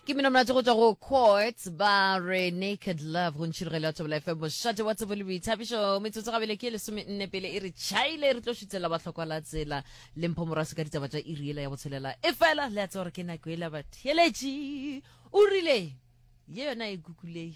ke mino monate go tswa go quarts ba re naked love go ntšhirogelo ya thobela fm mošate wa tsebo le boithabišo metsotso gabele ke lesome nne pele e re chaile re tlo šutlela batlhokwa la tsela le mpho morase ka ditaba tša iri ela ya botshelela e fela le a tse gore ke nako ela batheletši o rile ye yona e kukulei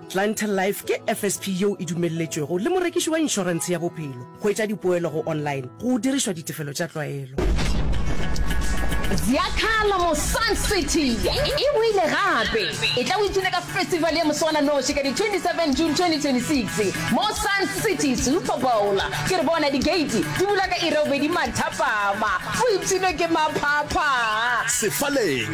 Clientele Life ke FSP yeo e dumelletšwego le morekiši wa inšorentshe ya bophelo go etša dipoelo go online go dirišwa ditefelo tša tlwaelo. Ziakhala mo Sun City e boile gape. E tla o itune ka festival ya moswananoši ka di 27 June 2026 mo Sun City Super Bowl. Ke re bona digeiti di bula ka iri ya bobedi mathapama, go ipshinwe ke maphapha. Sefaleng,